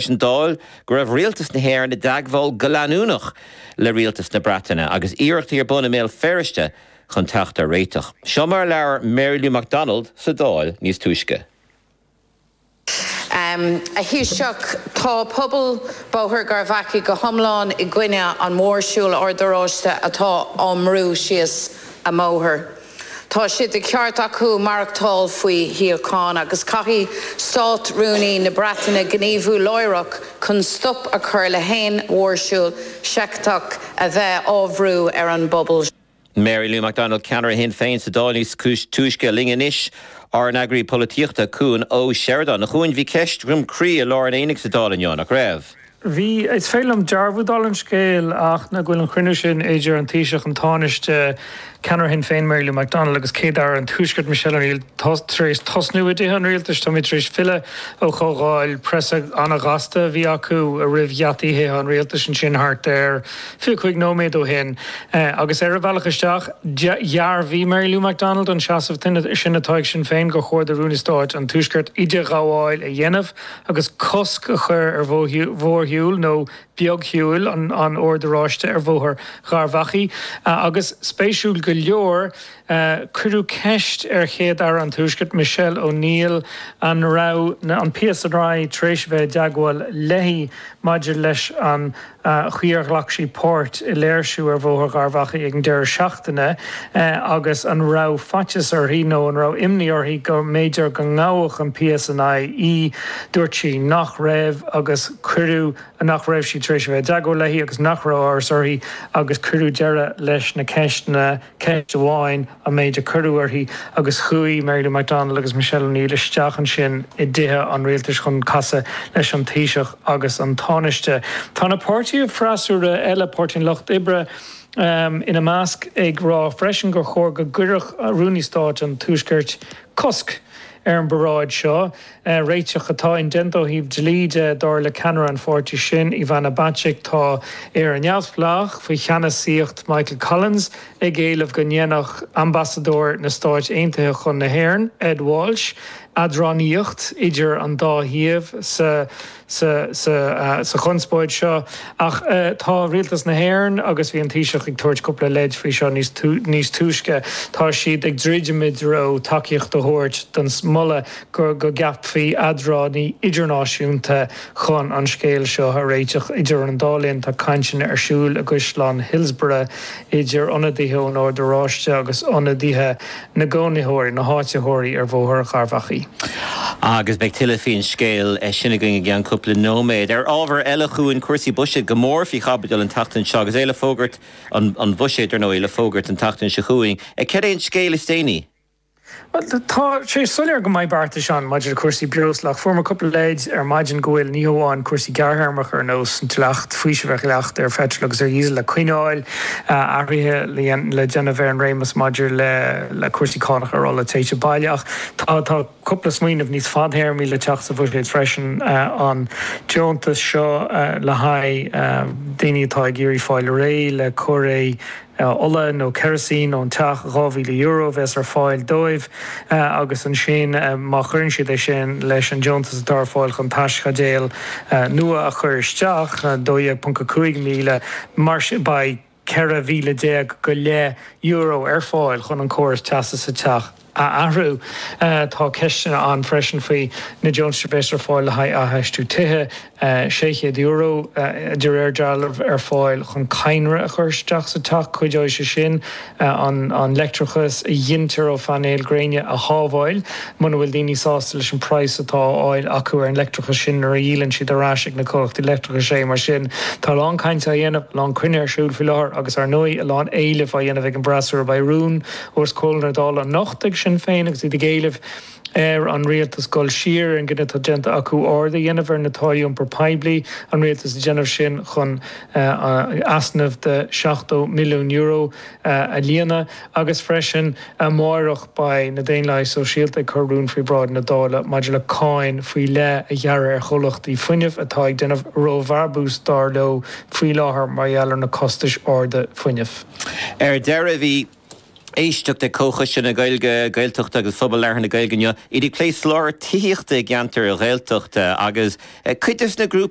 leis an Dáil go raibh Rialtas na hÉireann i dteagmháil go leanúnach le Rialtas na Breataine agus iarrachtaí ar bun i mBéal Feirste chun teacht ar réiteach. Seo mar a labhair Mary Lou McDonald sa Dáil níos túisce. A Thaoisigh, tá pobal Bhóthar Gharbh Achaidh go hiomlán i gcoinne an mhórshiúil Oird Oráiste atá á bhrú síos a mbóthar. Tá sé de cheart acu maireachtáil faoi shíocháin agus caithfidh Stát Rúnaí na Breataine gníomhú láithreach chun stop a chur le haon mhórshiúl seicteach a bheith á bhrú ar an bpobal seo. Mary Lou McDonald, ceannaire Shinn Féin sa Dáil níos túisce. Linn anois ár n-eagraí polaitíochta, Cuan Ó Seireadáin. A Chuain, bhí ceist Dhroim Crí i lár an aonaigh sa Dáil inniu, nach raibh? Bhí, is féidir liom dearbhú dála an scéil, go bhfuil an cruinniú sin idir an Taoiseach, an Tánaiste, ceannaire Shinn Féin Mary Lou McDonald agus Céad-Aire an Tuaiscirt Michelle O'Neill tar éis tosnú i dTithe an Rialtais. Táimid tar éis filleadh ó chomhdháil preasa an-ghasta a bhí acu roimh gheataí Thithe an Rialtais ansin thart ar fiche cúig nóiméad ó shin agus ar a bhealach isteach dhearbhaigh Mary Lou McDonald an seasamh sin atá ag Sinn Féin gur chóir do Rúnaí Stáit an Tuaiscirt idirghabháil a dhéanamh agus cosc a chur ar mhórshiúl nó beagshiúil an Oird Oráiste ar Bhóthar Gharbh Achaidh agus, spéisiúil go leor, cuireadh ceist ar Chéad-Aire an Tuaiscirt, Michelle O'Neill, an raibh an PSNI tar éis a bheith i dteagmháil léi maidir leis an chaoi ar ghlac sí páirt i léirsiú ar Bhóthar Gharbh Achaidh ag an deireadh seachtaine agus an raibh faitíos uirthi nó an raibh imní uirthi go mb'fhéidir go ngabhadh an PSNI í. Dúirt sí nach raibh agus cuireadh nach raibh siad tar éis a bheith i dteagmháil léi agus nach raibh amhras uirthi agus cuireadh deireadh leis na ceisteanna. Ceist amháin an méid a cuireadh uirthi agus chuaigh Mary Lou McDonald agus Michelle O'Neill isteach ansin i dTithe an Rialtais chun casadh leis an Taoiseach agus an Tánaiste. Tá na páirtithe freasúra eile, Páirtí an Lucht Oibre ina measc, ag rá freisin gur chóir go gcuirfeadh Rúnaí Stáit an Tuaiscirt cosc ar an bparáid seo. Réiteach atá indéanta ó thaobh dlí de, dar le ceannaire an pháirtí sin, Ivana Bacik. Tá Éire Neamhspleách, faoi cheannasaíocht Michael Collins, ag éileamh go ndéanfadh Ambasadóir na Stáit Aontaithe chun na hÉireann, Ed Walsh, eadránaíocht idir an dá thaobh sa. sa chonspóid seo. Ach tá Rialtas na hÉireann, agus bhí an Taoiseach ag tabhairt cúpla leid faoi seo níos túisce, tá siad ag druidim i dtreo tacaíocht a thabhairt don moladh go gceapfaí eadránaí idirnáisiúnta chun an scéal seo a réiteach. Idir an dá linn, tá cainteanna ar siúl i gCaisleán Hillsborough idir ionadaithe ón Ord Oráiste agus ionadaithe na gcónaitheoirí, na háititheoirí ar Bhóthar an Gharbhachaidh. Agus beidh tuilleadh faoin scéal sin againn i gceann cúpla nóiméad. Ar ábhar eile chugainn, cúrsaí buiséid go mór faoi chaibidil an tseachtain seo agus é le fógairt, an Buiséad, ar ndóigh, le fógairt an tseachtain seo chugainn. Cad é an scéal is déanaí? Bhuel, tá sé soiléir go mbeidh beartais ann maidir le cúrsaí breosla, ach fuaireamar cúpla leid ar maidin go bhfuil ní hamháin cúrsaí gearrthéarmacha ar nós an dleacht, faoisimh ar dhleacht ar pheitril agus ar dhíosal le coinneáil, athruithe le déanamh ar an réimeas maidir le cúrsaí cánach ar ola téite baile. Ach tá, tá cúpla smaoineamh níos fadthéarmaí le teacht sa bhuiséad freisin, an deontas seo le haghaidh daoine atá ag iarraidh fáil réidh le coire ola nó ceirisín ón teach, €2,000 a bheas ar fáil dóibh. agus ansin má chuireann siad é sin leis an deontas atá ar fáil chun teaschaidéal nua a chur isteach, 12.5 míle, mar sin beidh 14 mhíle go leith euro ar fáil chun an córas teasa sa teach a athrú. Tá ceisteanna ann freisin faoi na deontais a bheas ar fáil le haghaidh athfheistiú tithe. €600, de réir dealraimh, ar fáil chun cadhnra a chur isteach sa teach, cuideoidh sé sin an leictreachas a ghintear ó phainéil ghréine a shábháil, muna bhfuil daoine sásta leis an praghas atá á fháil acu ar an leictreachas sin nuair a dhíolann siad ar ais ag na comhlachtaí leictreachais é. Mar sin, tá a lán cainte á dhéanamh, a lán cruinnithe ar siúl faoi láthair agus, ar ndóigh, a lán éilimh á dhéanamh ag an bhfreasúra. Beidh rún os comhair na Dála anocht ag Sinn Féin agus iad ag éileamh, ar an rialtas dul siar ar an gcinneadh atá déanta acu ardú a dhéanamh ar na táillí iompar poiblí, an rialtas ag déanamh sin chun easnamh de €70 milliún a líonadh, agus freisin amárach beidh na Daonlathaigh Sóisialta ag cur rún faoi bhráid na Dála maidir le cáin faoi leith a ghearradh ar chomhlachtaí fuinnimh atá ag déanamh róbhrabúis, dar leo, faoi láthair mar gheall ar na costais arda fuinnimh. Ar deireadh, bhí. Éisteacht ag comhchoiste na Gaeilge, na Gaeltachta agus Phobal Labhartha na Gaeilge inniu, iad ag plé soláthar tithíochta i gceantair Ghaeltachta agus cuid des na grúpaí,